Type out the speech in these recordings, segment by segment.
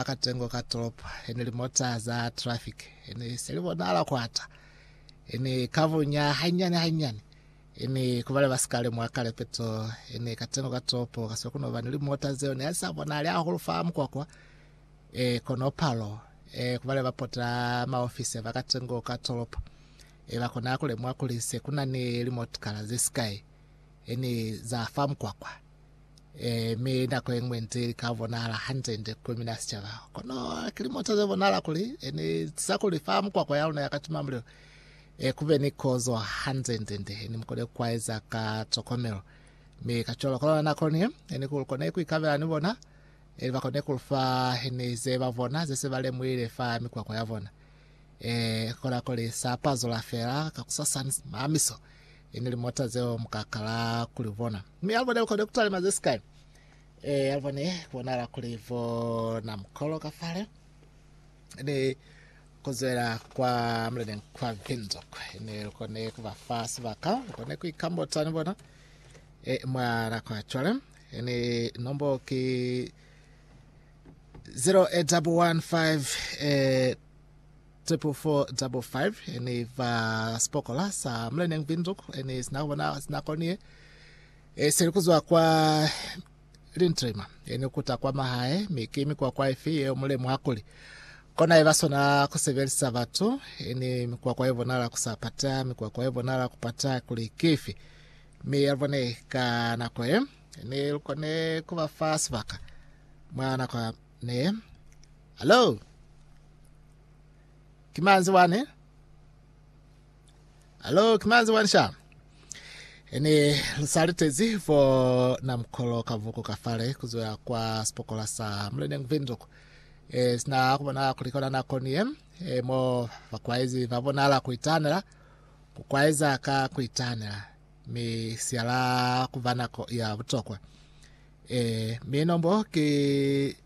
Ba ka tengo ka tolopo e ne limota za trafiki e ne se li bonahala kwata, e ne ka bunya hanyani hanyani, e ne ku bale ba si ka lemuha kale peto e ne ka tengo ka tolopo ka siko ku no ba ni limota zeo ne sa bonahali hahulu fa mukwakwa. E, kono palo e ku bale ba pota maofisi ba ka tengo ka tolopo e ba kona ku lemuha kuli se ku na ni limotkala ze sikai e ne za fa mukwakwa. Ee, mi nako ye ñwi nti li ka bonahala hande-nde ku mina sicaba. Kono ki limo nto ze bonahala kuli e ni tisa kuli fa mukwakwa ya luna ya ka timamulilo e ku be ni kozo hande-nde-nde e ni mu kone ku aeza ka tokomelo. Mi kacwalo, kono nako ni e ni ku lu kone ku ikabela ni bona, ili ba kone ku lu fa e ni ze ba bona ze se ba lemuhile fa mikwakwa ya bona. Ee, kona kuli sa pa zula fela kakusasani, Mamiso! Ini limota zeo muka kala kuli bona. Mi alibone ukone kutalima zesika. E, alibone kubonala kuli bona mukolo ka fale. Ni kuzwela kwa mlene kwa Windhoek. Ni lukone kuba fa sibaka. Lukone kuikambota ni bona. E, mwana kwa chwale. Ni nombo ki 0815 eh, 2 eh, Tepu fo double five ne i fa sipokola sa Mlenneng Windhoek ne sina kubona sina koniye e seli kuzwa kwa Lintrima ne kuta kwa mahae mi ki mikwakwa ifi yeo mulemu akuli kona iba sona kusebelisa batu ne mikwakwa ye bonala kusa pata mikwakwa ye bonala kupata kuli kifi mi yalibone ka nako ye ne lukone kuba fa sibaka mwa nako Ne. Hallo? Ki manzi wani? Hallo, ki manzi wani sha? Ene lusaletezi fo na mkolo ka vuku ka fale kuzoya kwa sipokola sa Mulending Windhoek. E, sina kubona kuli kona nako niye e, mo bakwaezi ba bonala kuitanela kukwaeza ka kuitanela mi siala kuva nako ya butokwa Ee, mi nombo ki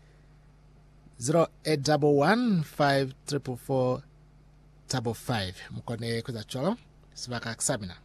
0811544555. Mukone kueza cwalo, sibaka kisamina.